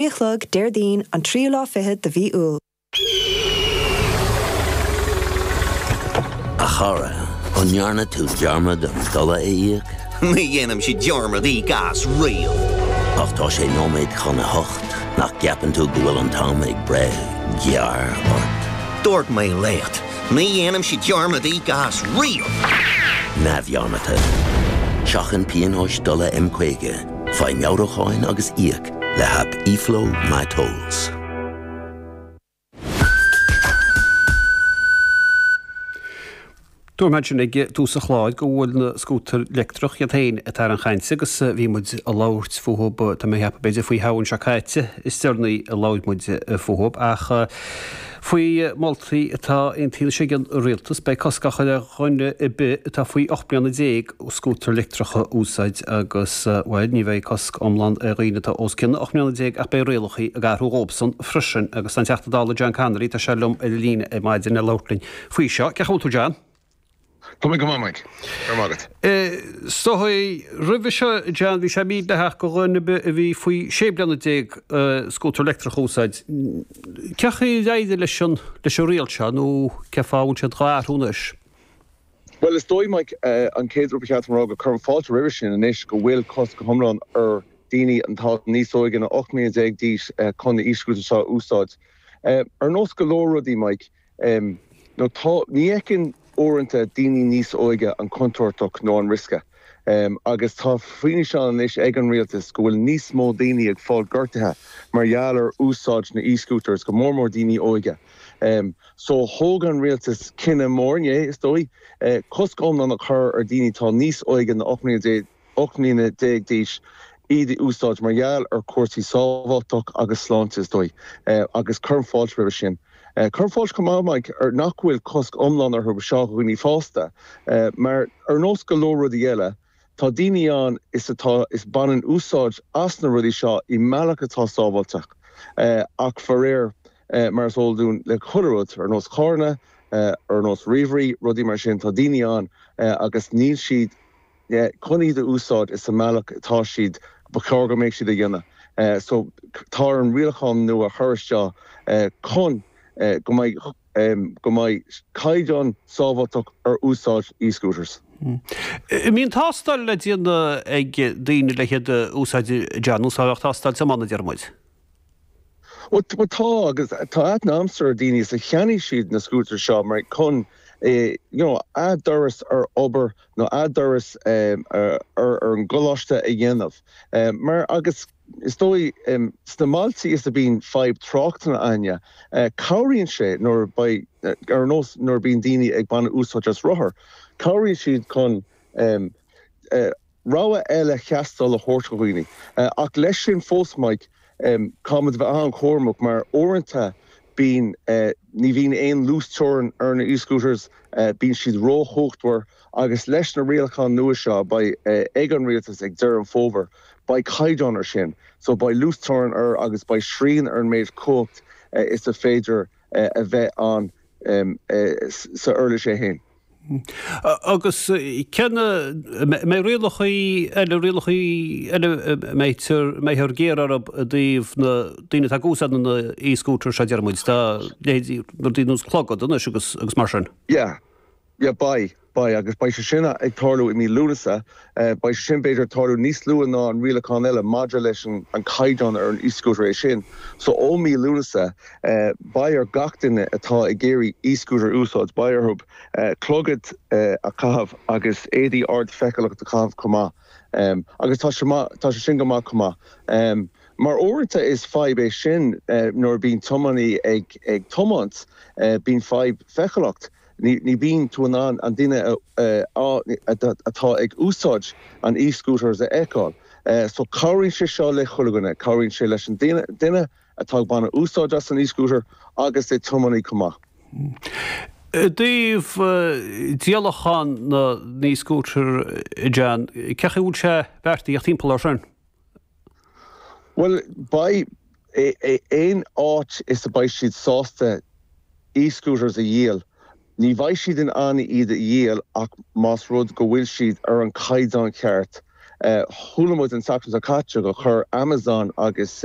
Sé a chlog, Déardaoin, an tríú lá fichead de mhí Iúil. A chara, an ndearna tú dearmad an dola a íoc? Ní dhéanann siad dearmad a íoc as riamh! Ach tá sé nóiméad chun a hocht, nach gceapann tú go bhfuil an t-am ag breith gearr ort? Dúirt mé leat, ní dhéanann siad dearmad a íoc as riamh! Neamhdhearmadta. Seachain pionóis dola M50, faigh meabhrúcháin agus íoc. le haip eFlow My Tolls. Dúirt mé ansin ag tús an chláir go bhfuil na scútair leictreach iad féin atá ar an gcaint agus bhí muid ag labhairt fúthu, tá mé ag ceapadh, b'fhéidir faoi Shamhain seo caite is deireanaí a labhair muid fúthu ach, Faoi mholtaí atá aontaithe anois ag an rialtas, beidh cosc á chur ar dhuine ar bith atá faoi 18 mbliana scútair leictreacha a úsáid agus, bhuel, ní bheidh cosc iomlán ar dhaoine atá os cionn 18 mbliana ach beidh rialacha ag athrú dhóibhsan freisin agus tá an Teachta Dála John Connolly, tá sé liom ar an líne ar maidin, le labhairt linn faoi seo. Cén chaoi a bhfuil tú, John? Tá mé go maith, Mike. Go raibh maith agat. So roimhe seo, John. Bhí sé mídhleathach go dhuine ar bith a bhí faoi 16 bliana scútar leictreach a úsáid. Cén chaoi ar éirigh leis an riail seo nó cén fáth a bhfuil siad dhá athrú anois? Bhuel, is dóigh, Mike, an chéad rud ba cheart dom a rá go cuirim fáilte roimhe sin anois go bhfuil cosc go hiomlán ar dhaoine atá níos óige ná 18 mbliana d'aois chun na e-scútair seo a úsáid. Ar nós go leor rudaí, Mike, Em. nó tá. Ní fheiceann, uaireanta, daoine níos óige an chontúirt nó an riosca. Em. agus tá fianaise ann anois ag an rialtas go bhfuil níos mó daoine ag fáil gortaithe mar gheall ar úsáid na e-scooters, go mór mór daoine óige. Em. So, thóg an rialtas cinneadh mór inné, is dóigh, eh cosc iomlán a chur ar daoine atá níos óige ná 18 mbliana. 18 mbliana d'aois, iad a úsáid mar gheall ar chúrsaí sábháilteachta agus sláinte, is dóigh, agus cuirim fáilte roimhe sin. Cuirim fáilte chomh maith, Mike, nach bhfuil cosc iomlán orthu do dhaoine fásta, mar ar nós go leor rudaí eile, tá daoine ann is atá is baineann úsáid as na rudaí seo i mbealach atá sábháilteach, ach faraor, mar is eol dúinn le chuile rud, ar nós carranna, ar nós ríomhairí, rudaí mar sin, tá daoine ann agus níl siad. chun iad a úsáid is sa mbealach atá siad ba chóir go mbeidh siad a dhéanamh so tá orainn rialacháin nua a chur isteach chun go mbeidh go mbeidh caighdeán sábháilteacht ar úsáid e-scooters. An mbíonn tástáil le déanamh ag daoine le hiad a úsáid i dteach, ar nós a bheadh tástáil tiomána a deir muid. Bhuel, bhuel tá, agus tá, a, na, ana-chuid daoine is a cheannaigh siad na scútair seo mar chun, eh, you know, a dturas ar obair nó a dturas, em, ar, ar an gcoláiste a dhéanamh. Eh, mar agus is dóigh, em, sna mbailtí is a bhíonn fadhb tráchta againne, eh, cabhraíonn sé nuair beidh, eh, ar nós nuair a bhíonn daoine ag baint úsáid as rothar, cabhraíonn siad chun, em, eh, rogha eile taistil a thabhairt do dhaoine. Ach leis sin fós Máirt, caithfimid a bheith an-chúramach mar uaireanta bíonn, ní bhíonn aon luasteorainn ar na e-scooters, bíonn siad róchumhachtmhar agus leis na rialacháin nua seo a beidh ag an rialtas ag deireadh an fhómhair, beidh caighdeán air sin. So beidh luasteorainn air agus beidh srian ar an méid cumhacht is a féidir a bheith ann sa uirlis é fhéin. Agus an mbeidh rialacha eile, rialacha eile atá muid ag cur orthu i dtaobh na daoine atá ag úsáid na e-scooters seo, deir muid, dá leithéidí, rud éigin ar nós clogad anois agus mar sin? Yeah, yeah beidh, beidh, agus beidh sé sin ag tarlú i mí Lúnasa Beidh sé sin, b'fhéidir, ag tarlú níos luaithe ná an rialachán eile maidir leis an caighdeán ar an e-scútar, é sin so ó mhí Lúnasa beidh ar gach duine atá ag iarraidh e-scútar a úsáid, beidh orthu clogad a chaitheamh agus éadaí ardfheiceálacht a chaitheamh chomh maith. Agus tá sé maith, tá sé sin go maith chomh maith. Mar uaireanta is fadhb é sin nuair a bhíonn tiománaí ag tiomáint, bíonn fadhb feiceálacht. Ní bhíonn tú in ann an duine atá ag úsáid an e-scooters a fheiceáil. So cabhraíonn sé seo le chuile dhuine. Cabhraíonn sé leis an duine atá ag baint úsáid as an e-scooter agus an tiománaí chomh maith. I dtaobh díolachán na n-e-scooter, John, céard atá beartaithe timpeall air sin? Bhuel, beidh. Aon áit is a bheidh siad sásta e-scooters a dhíol, ní bheidh siad in ann iad a dhíol ach más rud go bhfuil siad ar an chaighdeán cheart. Chuala muid an tseachtain seo caite gur chuir Amazon agus.